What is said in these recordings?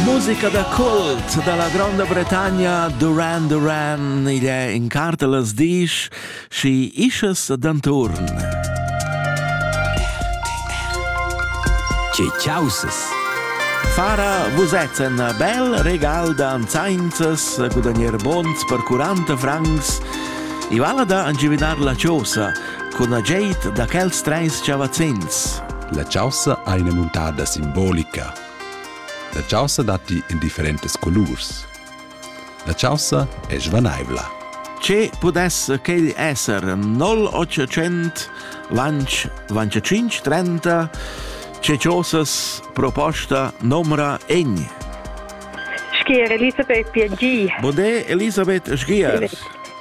Musica da cult dalla Gronda Bretagna Duran Duran igl è in cartelas disch schi ischas d'anturn. Tge ciausas! Fara vusets en bel regal da anzainzas, gudagnere bons per 40 francs. I vala da angividar la chosa, cun agid da quels treis chavazzins. La chaussa ha ina muntada simbolica. La chaussa datti in differentes colurs. La chaussa è svanaivla. Ce pudesse quel essere 0800 lanch 25 30 ce chosas proposta nomra egni? Schier Elisabeth Piangi. Bode Elisabeth Schiers.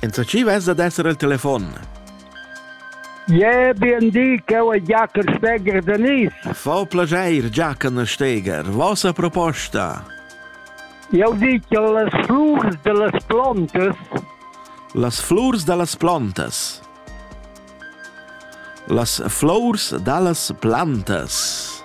Enzatgi vess ad esser il telefon. Je bien di, che è Jacker Steger Denis. Fa piacere, Jacken Steger. Vostra proposta? Io dico las flurs delle plantes. Las flurs delle plantes. Las flors dallas plantas.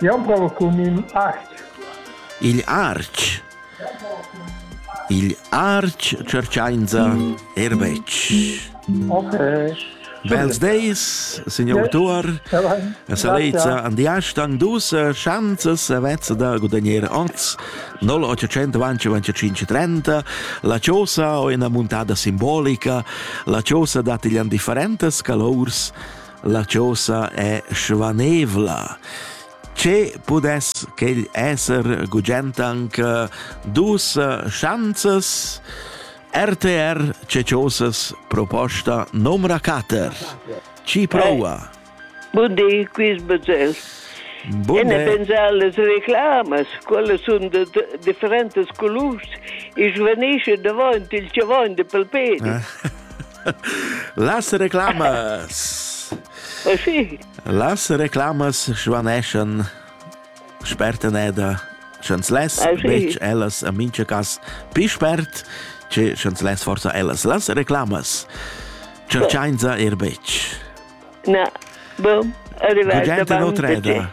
Jau prova cun in artg. Igl artg. Igl artg tscherchainsa er betg. Ok. Bels deis, signor autur, a Salezza an diastang dus chanzas a vezza da gudagnere oz 0825 la chosa o ina muntada simbolica la chosa dat igl an differentas calours La chosa è svanevla. Che pudess quel esser gugent anc dus schanzas? RTR Ceciosas proposta numra 4. Ci prova. Buondì, quis Bazell. Bunde. E pensar las reclamas, quelle sono de differentes colors, e svanisce davanti il cevon de palperi. Ah. Las reclamas. Oh, sì. Las reclamas svaneschan sperteneda sch'ans les ah, betg ellas a mincha cas pi spert che sch'ans les forza ellas las reclamas cerchainza er betg. Na, bom, arrivata Gugente d'Otreda.